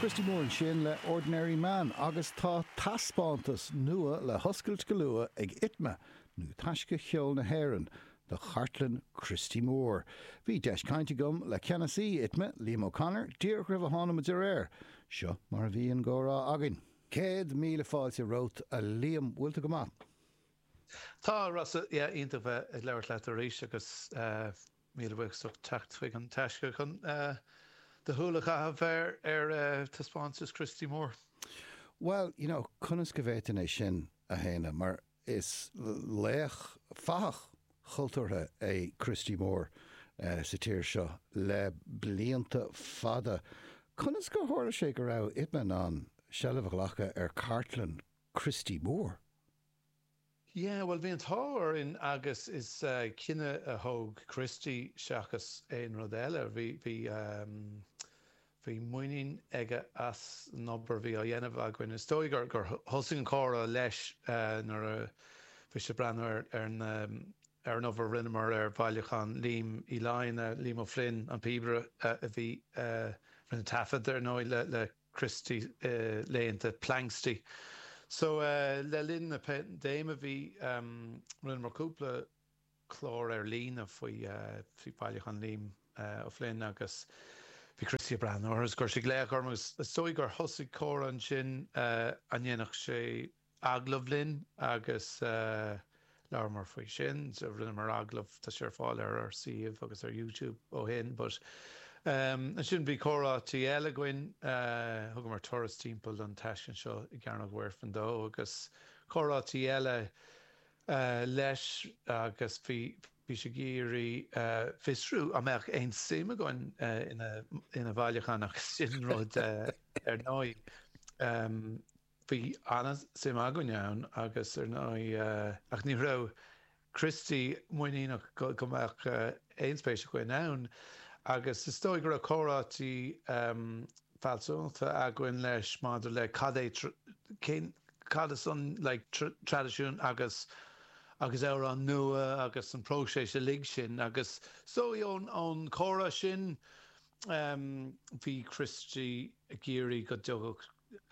Christy Moore ansin le Ordinary Man agus tá taispeántas nua le hoscailt go luath ag Itma, nó Taisce Cheoil na hÉireann, do chartlann Christy Moore. Bhí deis caint agam le ceannasaí Itma, Liam O'Connor, díreach roimh a thánamar ar aer. Seo mar a bhí an comhrá againn. Céad míle fáilte romhat, a Liam. Bhfuil tú go maith? Tá, Rossa. Yeah, iontach bheith ag labhairt leat arís agus. Míle buíochas as ucht teacht chuig An Taisce chun do shúil a chaitheamh ar taispeántas Christy Moore. Bhuel, you know, conas go bhféadfainn é sin a shéanadh mar is laoch, fathach chultúrtha é Christy Moore sa tír seo le blianta fada. Conas gur tharla sé go raibh Itma in ann seilbh a ghlacadh ar chartlann Christy Moore? Yeah, bhuel, bhí an t-ádh orainn agus is cinneadh a thóg Christy seachas aon rud eile. Bhí muinín aige as an obair a bhí á dhéanamh againn. Is dóigh gur thosaigh an comhrá leis nuair a bhí sé ag breathnú ar an obair a rinneamar ar bhailiúchán Liam Uí Fhloinn, Liam O'Flynn, an píobaire a bhí, a rinne taifead, ar ndóigh, le. Christy laethanta Planxty. So le linn na paindéime bhí, rinneamar cúpla clár ar líne faoi Bhailiúchán Liam O'Flynn agus bhí Christy ag breathnú orthu is chuir sé glaoch orm agus is dóigh gur thosaigh comhrá ansin a ndéanfadh sé agallamh linn agus labhramar faoi sin. Rinneamar agallamh, tá sé ar fáil ar ár suíomh agus ar YouTube ó shin but ansin bhí comhráite eile againn, thugamar turas timpeall an taisclann seo i gCearnóg Mhuirfean dó agus comhráite eile leis agus bhí bhí sé ag iarraidh fiosrú an mbeadh aon suim againn ina bhailiúchán agus sin rud ar ndóigh. Bhí an-suim againn ann agus ar ndóigh, ach ní raibh Christy muiníneach go mbeadh aon spéis againn ann agus is dóigh go raibh comhráite fealsúnachta againn leis maidir le cad é, cén, cad is an like traidisiún agus agus amhráin nua agus an próiseas uilig sin agus is dóigh ón chomhrá sin, bhí Christy ag iarraidh go dtagadh.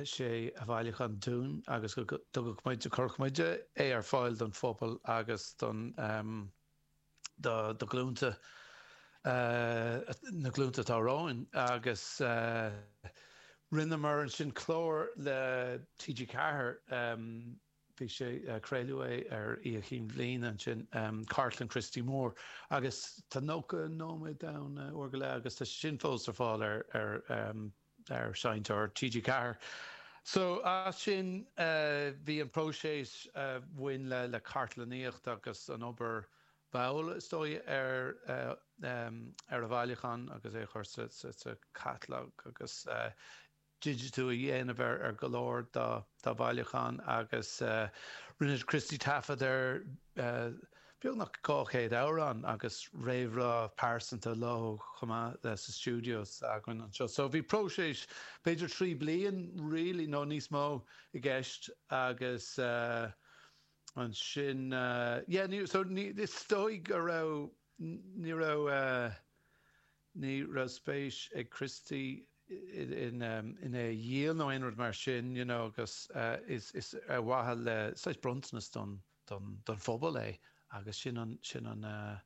sé a bhailiúchán dúinn agus go dtugadh muid, go gcuirfeadh muid, é ar fáil don phobal agus don, do ghlúnta, na glúnta atá romhainn agus rinneamar ansin clár le TG4, bhí sé, craoladh é ar Oíche Chinn Bhliana ansin, Cartlann Christy Moore agus tá 90 nóiméad ann, uair go leith agus tá sé sin fós ar fáil ar, ar Sheinnteoir TG4. So as sin bhí an próiseas a bhain le cartlannaíocht agus an obair mhall is dóigh ar a bhailiúchán agus é a chur sa chatalóg agus digitiú a dhéanamh ar go leor dá bhailiúchán agus rinne Christy taifead ar beagnach 200 amhrán agus réamhrá pearsanta leo chomh maith sa stiúideo s'againn anseo. So bhí próiseas b'fhéidir trí bliain really nó níos mó i gceist agus ansin yeah ní so is dóigh go raibh ní raibh ní raibh spéis ag Christy in in é a dhíol nó aon rud mar sin you know agus is is ar mhaithe le saghas bronntanas don don phobal é agus sin an, sin an eh.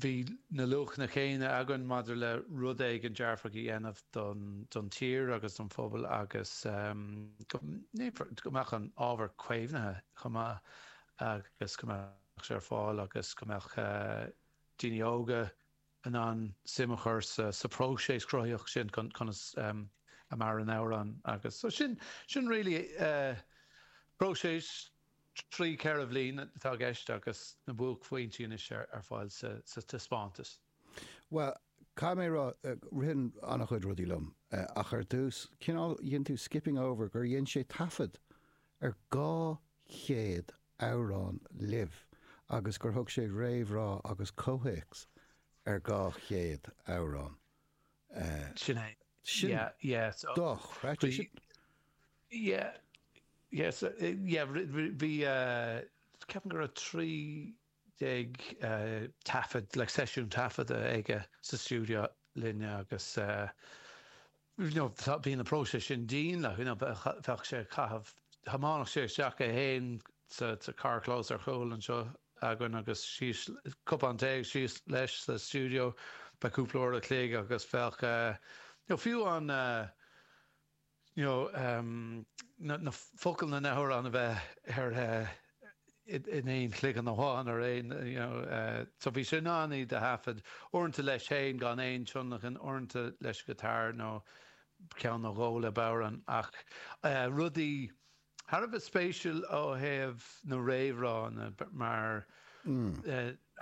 bhí na luachanna céanna againn maidir le rud éigin dearfach a dhéanamh don, don tír agus don phobal agus ehm go ndéanfar, go mbeadh an ábhar caomhnaithe chomh maith agus go mbeadh sé ar fáil agus go mbeadh eh daoine óga, in ann suim a chur sa phróiseas cruthaíoch sin, conas a maireann amhrán agus so sin, sin really próiseas trí ceithre bhliain atá i gceist agus na buaicphointí anois ar fáil sa taispeántas. Bhuel, caithfidh mé a rá, ritheann an-chuid rudaí liom ach ar dtús, cineál, dhein tú skipping over gur dhein sé taifead ar 200 amhrán libh agus gur thug sé réamhrá agus comhthéacs ar dhá chéad amhrán. Sin é. Sin é. Yeah, yeah. Dochreidte sin. Yeah, yeah, so, yeah, bhí, ceapaim go raibh trí déag taifead, like seisiún taifeadta aige sa stiúideo linne agus Bhí an próiseas sin dian like bheadh sé ag caitheamh. Thiomáineadh sé isteach é féin sa carrchlós ar chúl anseo againn agus síos, cupán tae agus síos leis sa stiúideo. Bheadh cúpla uair a' chloig agus bheadh fiú an, you know, na focail na n-amhrán a bheith ar in aon chloigeann amháin ar aon so bhí sé in ann iad a thaifead, uaireanta leis féin gan aon tionlacan, uaireanta leis an ngiotár nó ceann nó dhó le bodhrán. Ach rudaí thar a bheith spéisiúil ó thaobh na n-amhrán mar.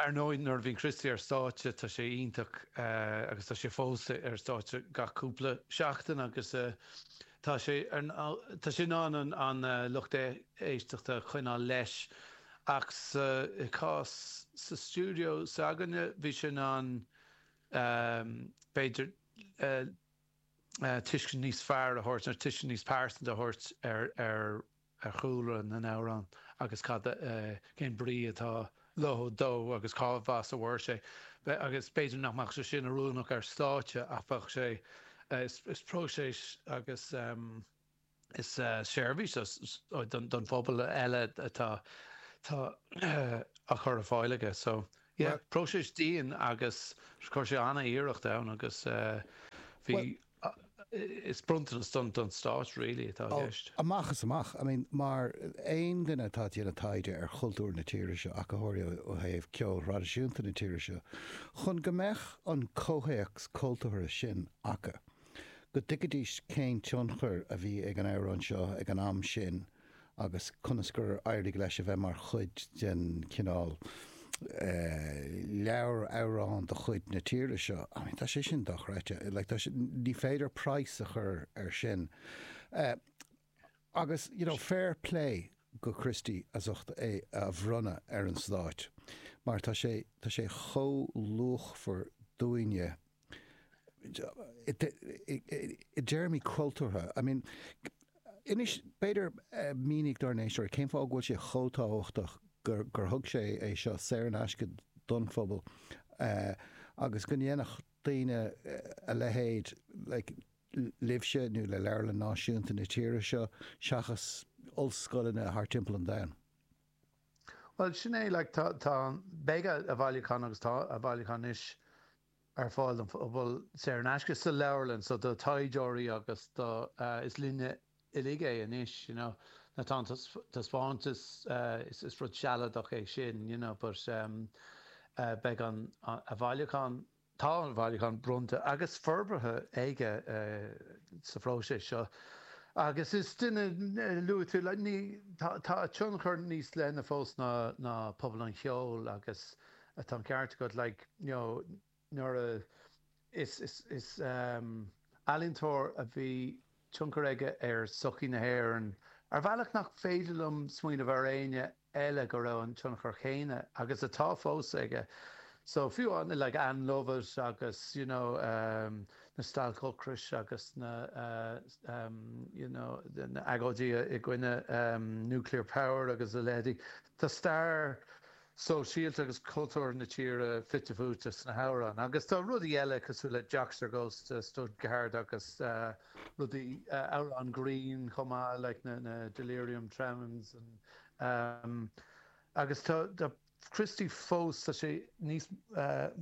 Ar ndóigh, nuair a bhíonn Christy ar stáitse, tá sé iontach agus tá sé fós ar stáitse gach cúpla seachtain agus tá sé, tá sé in ann an lucht éisteachta a choinneáil leis. Ach sa chás sa stiúideo s'againne, bhí sé in ann, b'fhéidir, tuiscint níos fearr a thabhairt, tuiscint níos pearsanta a thabhairt ar ar chúlra na n-amhrán agus cad, cén brí atá leo, dó agus cén chaoi a bhfuair sé. Agus b'fhéidir nach mbeadh sé sin oiriúnach ar stáitse ach bheadh sé, is próiseas agus is seirbhís don phobal eile atá á chur ar fáil aige. So, yeah, próiseas dian agus chuir sé an-iarracht ann agus bhí. Is bronntanas don Stáit really atá i gceist. Amach is amach. I mean, mar aon duine atá ag déanamh taighde ar chultúr na tíre seo, ach go háirithe ó thaobh ceoil thraidisiúnta na tíre seo, chun go mbeadh an comhthéacs cultúrtha sin acu, go dtuigfidís cén tionchar a bhí ag an amhrán seo ag an am sin, agus conas gur éirigh leis a bheith mar chuid den, cineál, leabhar amhrán de chuid na tíre seo. I mean, tá sé sin dochreidte. Like, tá sé, ní féidir praghas a chur air sin. Agus, you know, fair plé go Christy as ucht é a bhronnadh ar an Stát, mar tá sé, tá sé chomh luachmhar dúinne i dtéarmaí cultúrtha. I mean, inis, b'fhéidir, mínigh dár n-éisteoirí cén fáth go bhfuil sé chomh tábhachtach gur, gur thug sé é seo saor in aisce don phobal agus go ndéanfadh daoine a leithéid, like, libhse nó le Leabharlann Náisiúnta na tíre seo seachas ollscoileanna thart timpeall an domhain. Bhuel, sin é, like, tá, tá, beidh a, a bhailiúchán agus tá a bhailiúchán anois ar fáil don phobal saor in aisce sa leabharlann, so do thaighdeoirí agus do, eh, is linne uilig é anois, you know, nó tá an taispeántas, eh, is, is rud sealadach é sin, you know, but, em, eh, beidh an, a bhailiúchán. Tá a bhailiúchán bronnta agus forbartha aige sa phróiseas seo agus is duine luaite, tá a thionchar níos leithne fós ná pobal an cheoil agus tá an ceart agat, like, you know, nuair a, is ealaíontóir a bhí. tionchar aige ar sochaí na hÉireann ar bhealach nach féidir liom smaoineamh ar éinne eile go raibh an tionchar céanna agus atá fós aige so fiú amháin like Ann Lovett agus you know na stailc ocrais agus na you know na agóidí i gcoinne nuclear power agus a leithéidí tá stair sóisialta agus cultúrtha na tíre fite fuaite sna hamhráin agus tá rudaí eile cosúil le 'Joxer Goes to Stuttgart' agus rudaí, amhráin ghrinn chomh maith like na 'Delirium Tremens' agus tá Christy fós, tá sé níos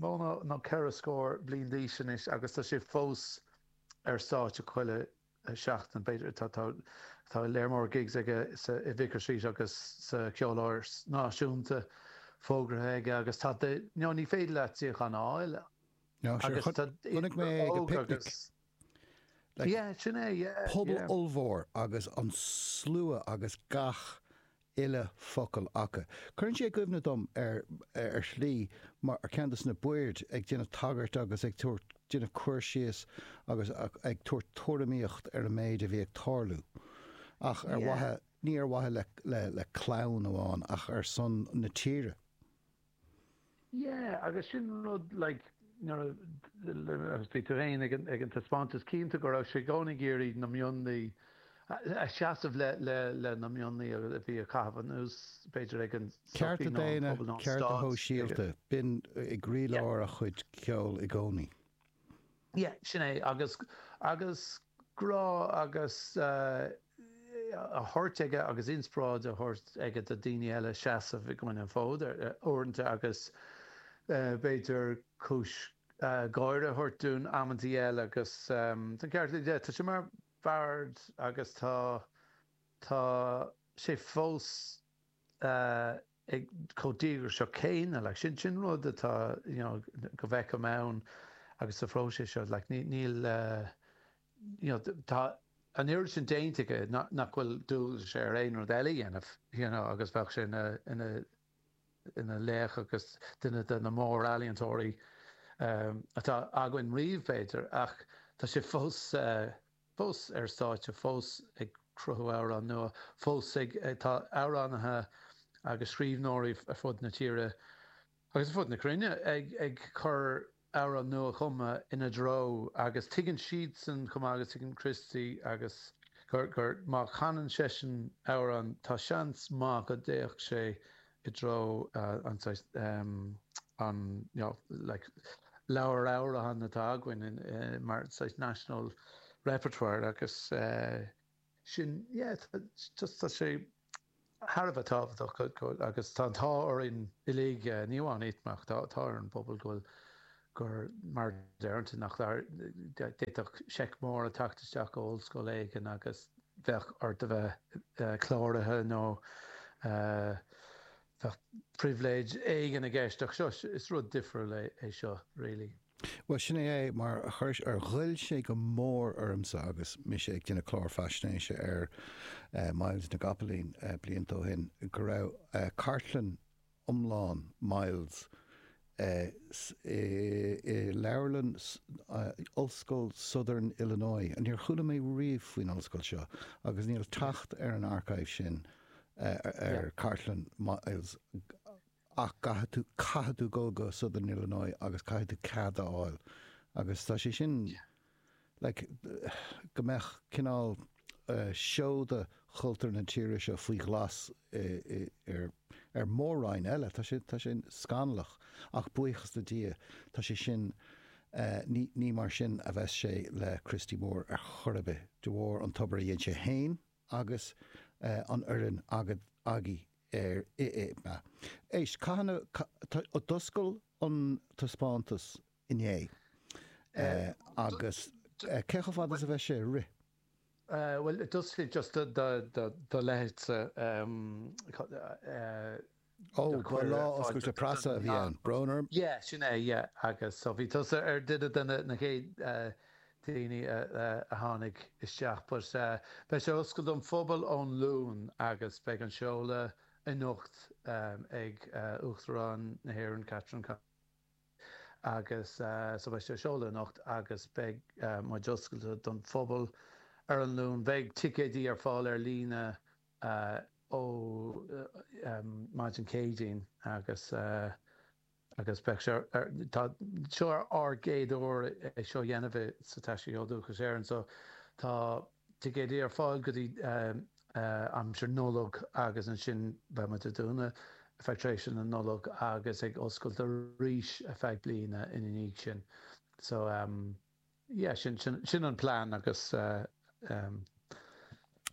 mó ná ceithre scór bliain d'aois anois agus tá sé fós ar stáitse chuile seachtain, b'fhéidir. Tá lear mór gigs aige i Vicar Street agus sa Ceoláras Náisiúnta fógartha aige agus tá do no, ní féidir leat suíochán a fháil. No, sure. Agus tá Chonaic mé ag an picnic. Like, yeah, sin é, yeah. Pobal yeah. ollmhór agus an slua agus gach uile focal acu. Cuireann sé i gcuimhne dom, ar shlí, mar ceann des na baird ag déanamh tagairt agus ag tabhairt, ag déanamh cur síos agus ag tabhairt tuairimíocht ar an méid a bhí ag tarlú. Ach ar mhaithe, ní ar mhaithe le clann amháin ach ar son na tíre. Yeah, agus sin an rud, like, nuair a, agus bhí tú fhéin ag an, ag an taispeántas cinnte go raibh sé i gcónaí ag iarraidh na mionlaigh a, a seasamh le, le, le na mionlaigh a, a bhí á gcaitheamh anuas, b'fhéidir, ag an Cearta sochaí nó an daonna, pobal nó an cearta stát, ag an. sóisialta, b'in i gcroílár a chuid ceoil i gcónaí. Yeah, sin é, agus, agus grá agus eh, a thabhairt aige agus inspioráid a thabhairt aige do dhaoine eile seasamh i gcoinne an fód ar, ar, uaireanta agus eh, b'fhéidir cúis eh, gháire a thabhairt dúinn amantaí eile agus em, tá an ceart agat, tá sé mar bard agus tá, tá sé fós. chomh díograiseach céanna. Like, sin, sin rud atá, you know, go bhfeicim ann agus sa phróiseas seo. Like, níl, níl uh, you know, tá an oiread sin déanta aige nach, nach bhfuil dualgas air aon rud eile dhéanamh, you know, agus bheadh sé ina, ina, ina laoch agus duine de na mór ealaíontóirí um, atá againn riamh, b'fhéidir, ach tá sé fós uh, fós ar stáitse, fós ag cruthú amhrán nua, fós ag. Tá amhránaithe agus scríbhneoirí ar fud na tíre agus ar fud na cruinne ag cur amhrán nua-chumtha ina threo agus tuigeann siadsan chomh maith agus tuigeann Christy agus gur má canann seisean amhrán tá seans maith go dtéann sé i dtreo an saghas an leabhar amhrán atá againn mar saghas national repertoire agus sin yeah just tá sé thar a bheith tábhachtach agus tá an t-ádh orainn uilig ní amháin iad ach tá ar an bpobal go bhfuil gur mar a deirtear nach d'fhéadfadh seic mór a theacht isteach ó ollscoil éigin agus bheadh ort a bheith cláraithe nó bheadh pribhléid éigin i gceist ach seo, is rud difriúil é seo really. Bhuel, sin é é, mar chuir, ghoill sé go mór ormsa agus mise ag déanamh clár faisnéise ar Myles na gCopaleen blianta ó shin, go raibh cartlann, iomlán Myles i Leabharlann Ollscoil Southern Illinois. Níor chuala mé riamh faoin ollscoil seo agus níl teacht ar an archive sin ar chartlann Myles ach caithfidh tú dul go Southern Illinois agus caithfidh tú cead a fháil agus tá sé sin like go mbeadh cineál seoda chultúr na tíre seo faoi ghlas ar mhór-roinn eile. Tá sé, tá sé scannalach ach buíochas le Dia tá sé sin, ní, ní mar sin a bheas sé le Christy Moore ar chor ar bith, de bharr an obair a dhein sé fhéin agus an fhoireann ag, agaibh air, i, i, a. Éist, caithfidh na, d'oscail an taispeántas inné. Agus cé chomh fada is a bheidh sé i rith? Bhuel, it does fit just do leithéidse Ó, gur lá oscailte preasa a bhí ann, Broner. Yeah, sin é, yeah. Agus so bhí tusa ar duine de na chéad daoine a tháinig isteach. But beidh sé oscailte don phobal ón Luan agus beidh an seoladh anocht ag Uachtarán na hÉireann, Catherine Connolly. agus so beidh sé seolta anocht agus beidh muid oscailte don phobal ar an Luan. Beidh ticéidí ar fáil ar líne ó maidin Céadaoin agus agus beidh sé ar so tá seo ár gcéad uair é seo a dhéanamh i sa Taisce Cheol Dúchais Éireann so tá ticéidí ar fáil go dtí aimsir Nollag agus ansin beidh muid ag dúnadh ar feadh tréimhse na Nollag agus ag oscailt arís ar feadh bliana ina dhiaidh sin. So yeah sin sin an plean agus ehm.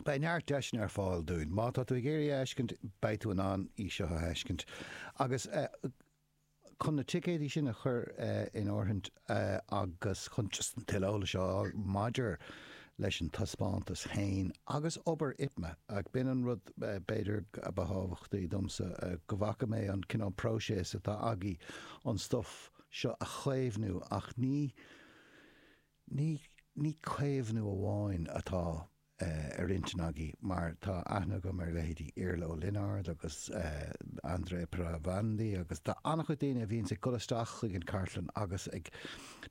beidh neart deiseanna ar fáil dúinn. Má tá tú ag iarraidh é a fheiscint beidh tú in ann í seo a fheiscint agus eh. chun na ticéidí sin a chur in áirithint agus chun tuilleadh eolais a fháil maidir leis an taispeántas féin agus obair ITMA. B'in an rud, b'fhéidir, ba thábhachtaí domsa, go bhfaca mé an cineál próiseas atá agaibh an stuif seo a chaomhnú ach ní caomhnú amháin atá ar intinn agaibh mar tá aithne agam ar leithéidí Iarla Ó Lionáird agus André Pirovandi agus tá an-chuid daoine a bhíonns ag dul isteach chuig an chartlann agus ag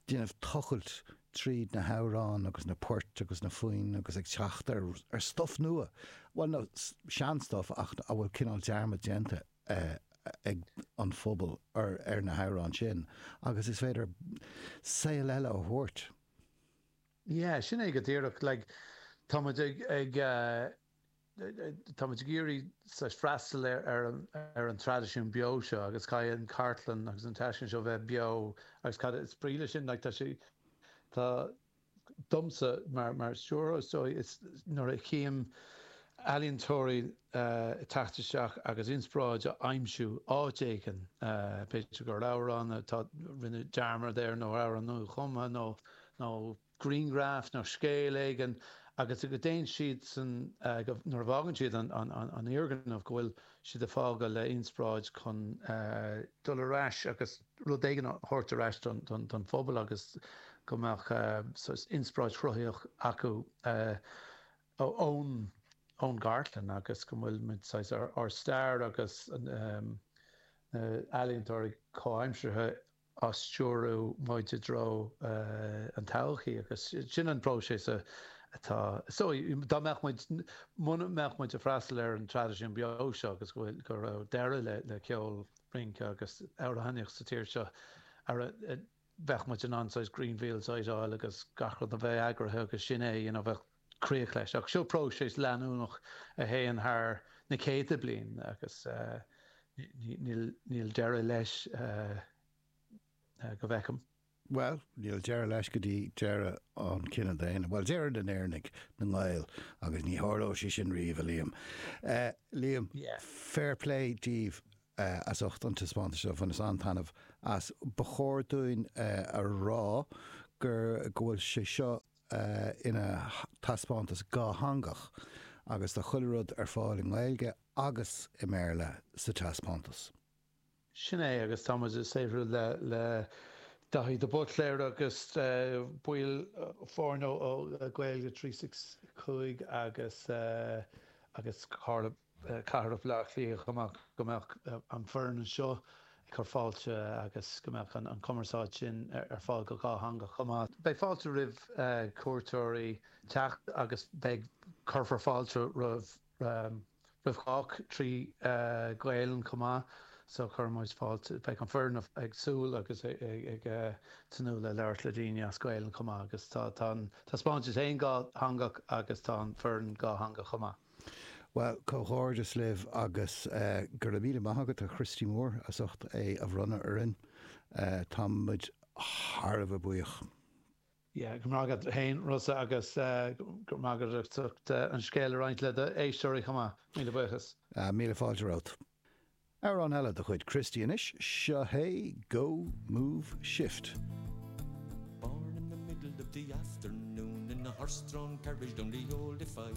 déanamh tochailt tríd na hamhráin agus na poirt agus na foinn agus ag teacht ar stuif nua, bhuel nó seanstuif ach a bhfuil cineál dearmad déanta ag an phobal ar na hamhráin sin agus is féidir saol eile a thabhairt. Yeah, sin é go díreach. Like, tá muid ag, ag eh, tá muid ag iarraidh saghas freastal ar, ar, an, ar an traidisiún beo seo agus caithfidh an chartlann agus an taisce seo bheith beo agus cad is brí le sin, like, tá sé, tá, domsa mar, mar stiúrthóir, is dóigh, is nuair a chím ealaíontóirí eh, ag teacht isteach agus inspioráid a aimsiú áit éigin, eh, b'fhéidir gur amhrán atá, rinneadh dearmad air nó amhrán nuachumtha nó, nó grianghraf nó scéal éigin agus go dtéann siad san, nuair a bhfágann siad an fhoirgneamh, go bhfuil siad ag fágáil le inspioráid chun dul ar ais agus rud éigin a thabhairt ar ais don phobal agus go mbeadh saghas inspioráid chruthaíoch acu ón gcartlann agus go bhfuil muid, saghas, ár stair agus na ealaíontóirí comhaimseartha ag stiúradh muid i dtreo an todhchaí agus sin an próiseas atá is dóigh, dá mbeadh muid, muna mbeadh muid ag freastal ar an traidisiún beo seo agus go bhfuil, go raibh deireadh le le ceol, rince agus amhránaíocht sa tír seo, ara bheadh muid in ann saghas greenfield a fheiceáil agus gach rud a bheith eagraithe agus sin é, you know, bheadh. críoch leis. Ach seo próiseas leanúnach a théann thar na céadta bliain agus níl deireadh leis go bhfeicim. Bhuel, níl deireadh leis go dtí deireadh an chine daonna, bhuel, deireadh na nÉireannaigh, na nGael, agus ní tharlóidh sé sin riamh, a Liam. Liam, fair play daoibh as ucht an taispeántais seo, bhaineas an-taitneamh as. Ba chóir dúinn a rá go bhfuil sé seo ina thaispeántas dhátheangach agus tá chuile rud ar fáil i nGaeilge agus i mBéarla sa taispeántas. Sin é agus tá muid ag saothrú le Daithí de Buitléar agus baill foirne ó Gaeilge 365 agus Cartlann. Cathrach Bhleá Cliath chomh maith go mbeadh an foireann anseo ag cur fáilte agus go mbeadh an chumarsáid sin ar fáil go dhátheangach chomh maith. Beidh fáilte roimh chuairteoirí teacht agus beidh cuirfear fáilte roimh roimh chách trí Ghaelainn chomh maith so cuireann muid fáilte beidh an foireann ag súil agus ag tnúth le labhairt le daoine as Gaelainn chomh maith agus tá an taispeántas ann dhátheangach agus tá an foireann dhátheangach chomh maith. Bhuel, comhghairdeas libh agus go raibh míle maith agat, a Chríostóir, as ucht é a roinnt orainn. Tá muid thar a bheith buíoch. Yeah, go raibh maith agat féin, Rossa, agus go raibh maith agat as ucht an scéal a roinnt le do éisteoirí chomh maith. Míle buíochas. Míle fáilte romhat. Amhrán eile de chuid Christy anois, seo é Go, Move, Shift. Born in the middle of the afternoon in a horse-drawn carriage down the old a five.